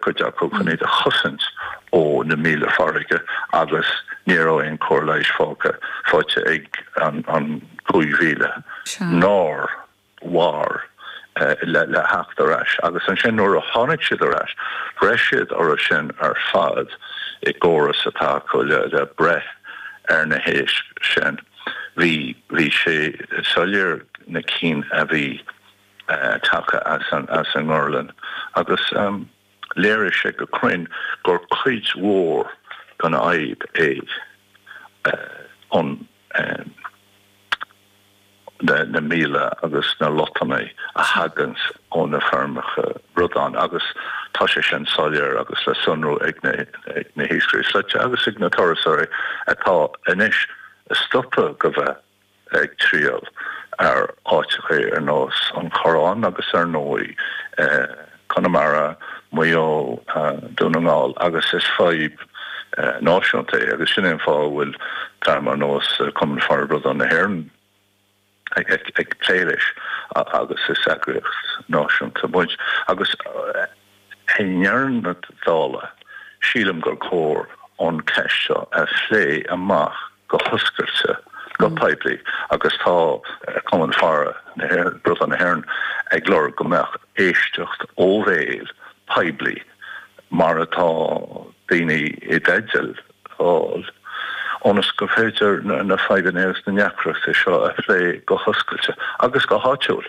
cuid acu chun iad a chosaint ó na míola farraige agus ní raibh aon chóir leighis fágtha faighte ag an 5,000 nár mhair le theacht ar ais agus ansin nuair a tháinig siad ar ais bhraith siad orthu sin ar fad i gcóras atá acu le breith ar na héisc sin. Bhí sé soiléir na cinn a bhí. tagtha as an ngorlann agus léirigh sé go cruinn gur cuid mhór den fhadhb é an na míola agus na lotnaidí a thagann ó na feirmeacha bradán agus tá sé sin soiléir agus le sonrú ag na hiascairí slaite agus ag na turasóirí atá anois stoptha de bheith ag triall ar áiteacha ar nós an Choireáin agus ar ndóigh Conamara, Maigh Eo, Dún na nGall agus is fadhb náisiúnta é agus sin é an fáth a bhfuil dream ar nós Cumann Faire Bradán na hÉireann ag plé leis agus is eagraíocht náisiúnta muid agus i ndeireadh na dála sílim gur chóir an cheist seo a phlé amach. go hoscailte, go poiblí agus tá Cumann Faire Bradán na hÉireann ag lorg go mbeadh éisteacht ó bhéal, poiblí, mar atá daoine i dteideal fáil, ionas gur féidir na fadhbanna agus na deacrachtaí seo a phlé go hoscailte agus go háitiúil.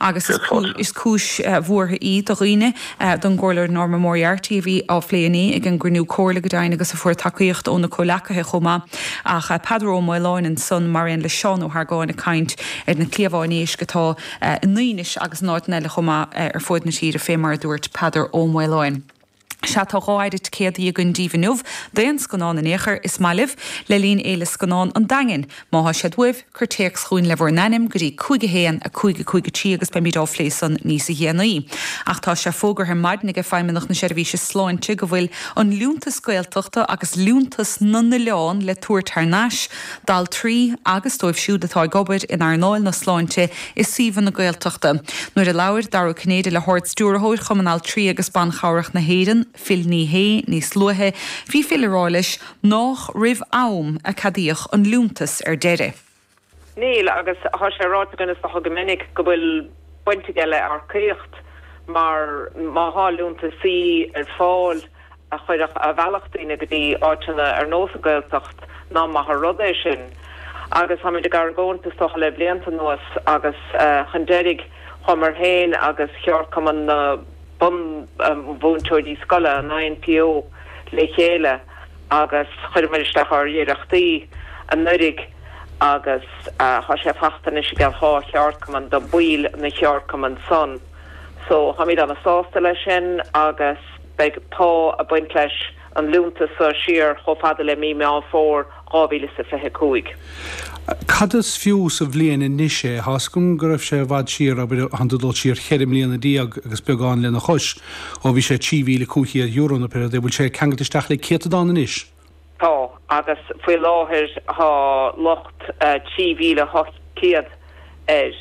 agus is cúis bhuartha í do dhaoine, don gComhairleoir Norma Moriarty a bhí á phlé inné ag an gcruinniú Comhairle, go deimhin, agus a fuair tacaíocht óna comhleacaithe chomh maith, ach Peadar Ó Maoláin ansan, mar aon le Seán Ó hArgáin, ag caint ar na cliabháin éisc atá i nDaoinis agus in áiteanna eile chomh maith ar fuaid na tíre, fé mar a dúirt Peadar Ó Maoláin. Sea, tá dhá phéire ticéadaí againn díbh inniu, d'aon scannán in aon chor is maith libh, le linn Fhéile Scannán an Daingin. Má thá siad uaibh, cuir téacs chugainn le bhur n-ainm go dtí 515 53 agus beimid á phlé san níos déanaí. Ach tá sé fógartha ar maidin aige Feidhmeannacht na Seirbhíse Sláinte go bhfuil an Liúntas Gaeltachta agus Liúntas na nOileán le tabhairt thar n-ais d'altraí agus dóibh siúd atá ag obair in earnáil na sláinte i suíomhanna na Gaeltachta. Nuair a labhair Dara Ó Cinnéide le hArd-Stiúrthóir Chumann Altraí agus Ban Cabhrach na hÉireann, Phil Ní Sheaghdha, níos luaithe, bhí Phil ag rá leis nách roimh am a ceadaíodh an liúntas ar deireadh. Níl, agus tá sé ráite againn is dócha go minic go bhfuil baint aige le earcaíocht mar má tá liúntaisí ar fáil, a chuirfeadh abhaile daoine go dtí áiteanna ar nós an Gaeltacht ná maith an rud é sin agus táimid ag argóint is dócha le blianta anuas agus chun deiridh chuamar féin agus cheardchumann na bunmhúinteoirí scoile, an INTO, le chéile agus chuireamar isteach ár n-iarrachtaí anuiridh agus tá sé fachta anois i gcomhair an dá cheardchumann do baill na gceardchumann san so táimid ana sásta leis sin agus. beidh pá ag baint leis an liúntas seo siar chomh fada le mí Meán Fómhair 2025. Cad is fiú sa bhliain anois é? Tá's agam go raibh sé i bhfad siar, abair, ag dul siar cheithre mbliana déag agus beagán lena chois, ó bhí sé €3,500 nó pé rud é, bhfuil sé ceangailte isteach le céatadán anois? Tá, agus faoi láthair tá luach 3,800 air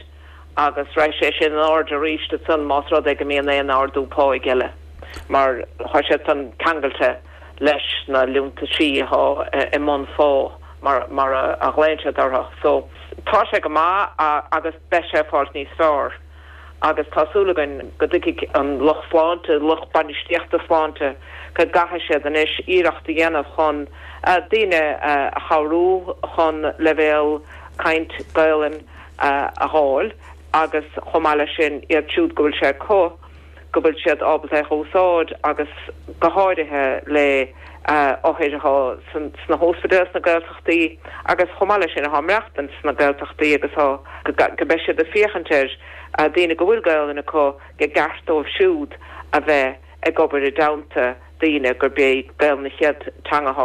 agus rachaidh sé sin in airde arís ansan más rud é go mbíonn aon ardú pá eile mar tá sé sin ceangailte leis na liúntaisí atá i mbunphá mar a ghlaonn siad orthu so tá sé go maith agus beidh sé ag fáilt níos fearr. agus tá súil againn go dtuigfidh an lucht sláinte, lucht bainistíochta sláinte, go gcaithfidh siad anois iarracht a dhéanamh chun daoine a chabhrú chun leibhéal caint Gaelainn a dh'fháil agus chomh maith leis sin iad siúd go bhfuil sé acu, go bhfuil siad ábalta é a úsáid agus go háirithe le othair atá sna hospidéil sna Gaeltachtaí agus chomh maith leis sin atá ag maireachtaint sna Gaeltachtaí agus go mbeidh siad ag féachaint ar daoine go bhfuil Gaolainn acu i gceart dóibh siúd a bheith ag obair i dteannta daoine gurb é Gaolainn an chéad teanga